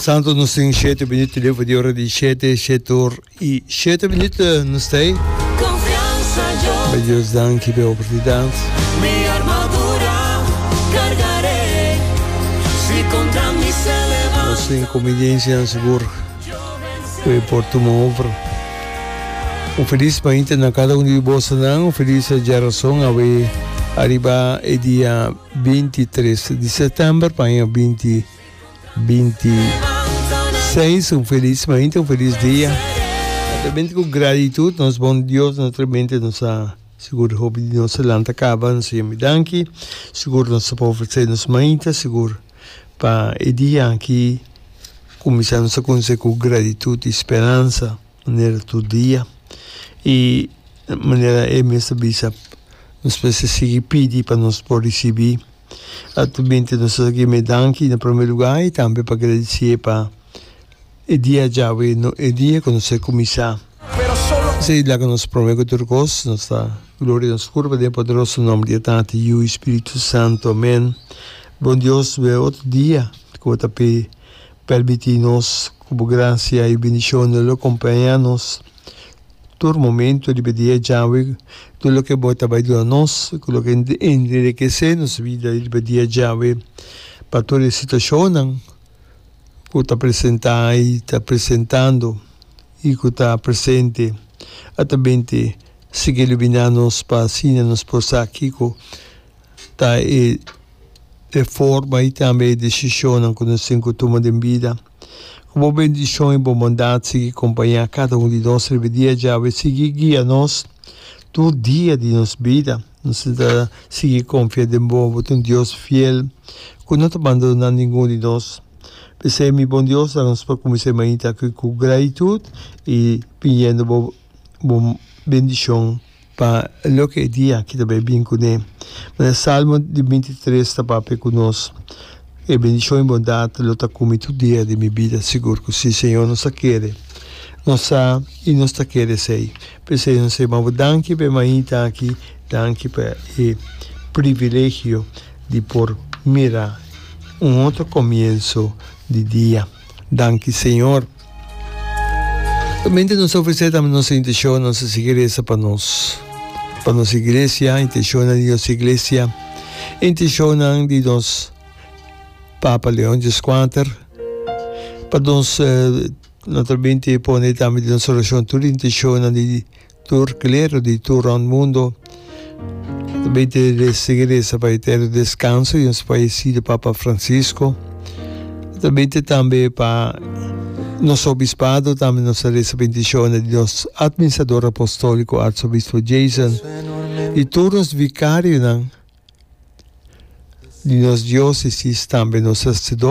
Santo nos sing siete minuut de voor de ora di siete, siete or i siete minuut eh, nos stay. Bij Dios dank je bij oportunidad. Mi armadura cargaré, si contra mi se levanta. Nos sing conveniencia en seguro. We por tuma over. Un feliz mañana na cada uno de vos. Un feliz geração a we arriba e dia. binti tres di sètèmber pa aña binti binti seis un felis mainta un felis dia notamente ku gratitud nos bon Dios notamente nos a sigur hopi di nos a lanta kaba nos a yama e danki sigur nos a por ofresé nos mainta sigur pa e dia aki kuminsá nos a kunsé ku gratitud i speransa. manera tur dia y manera e mes a bisa nos pues a sigui pidi pa nos por ricibi atu binti nos a gieme danki na prome lugar y tambe pa agradici'e pa e dia djawe e dia cu nos a cuminsa esey laga nos prome cu tur cos nos ta gloria nos curpa den e poderoso nomber di e Tata Yu y Spiritu Santo amen bon Dios we otro dia cu bo ta pe. Permití nos ku Bo grasia i bendishonnan lo kompañá nos tur momentu riba dia djawe. Tur loke Bo ta bai duna nos ku lo ke enderekesé nos bida riba dia djawe pa tur e situashonnan ku ta presentá i ta presentando i ku ta presente. Atabente sigui luminá nos pa asina nos por sa kiko ta e. e forma i tambe e desishonnan ku nos tin ku tuma den bida. Ku bo bendishon i bo bondat sigui kompañá kada un di nos riba dia djawe i sigui guia nos tur dia di nos bida. Nos ta sigui konfia den bo. Bo ta un Dios fiel ku no ta bandoná ningun di nos. P'esei mi Bon Dios, dal nos pa kumins'é mainta aki ku graitut i piñendo bo. bo bendicion pa loke e dia ki ta bai bin kuné. Mira Salmo di binti tres ta papia ku nos, E bendicion i bondat lo ta ku mi tur dia di mi bida. Sigur ku si, Señor, nos ta kere, nos sa i nos ta kere esei. P'e se nos ta maba danki p'e mainta aki, danki pa e privilegio di por mira un otro komienso di dia. Danki, Señor. Mente nos ta ofrecer tambe nos intención, nos ta sigui reza pa nos, pa nos iglesia, intencionnan di nos iglesia, intencionnan di nos Papa Leon Dies Quater, pa nos, no ta binte pone tambe den nos oracion tur intencionnan di. Tur klero di tur rònt mundu ta bai te segui resa pa e ta e deskanso i nos paisi di Papa Fransisko. Ta bai te tambe pa nos obispado tambe nos ta resa pa intishonnan di nos atministrador apostòliko Arsobispo Jason i tur nos vikarionan di nos diósesis tambe nos hasido.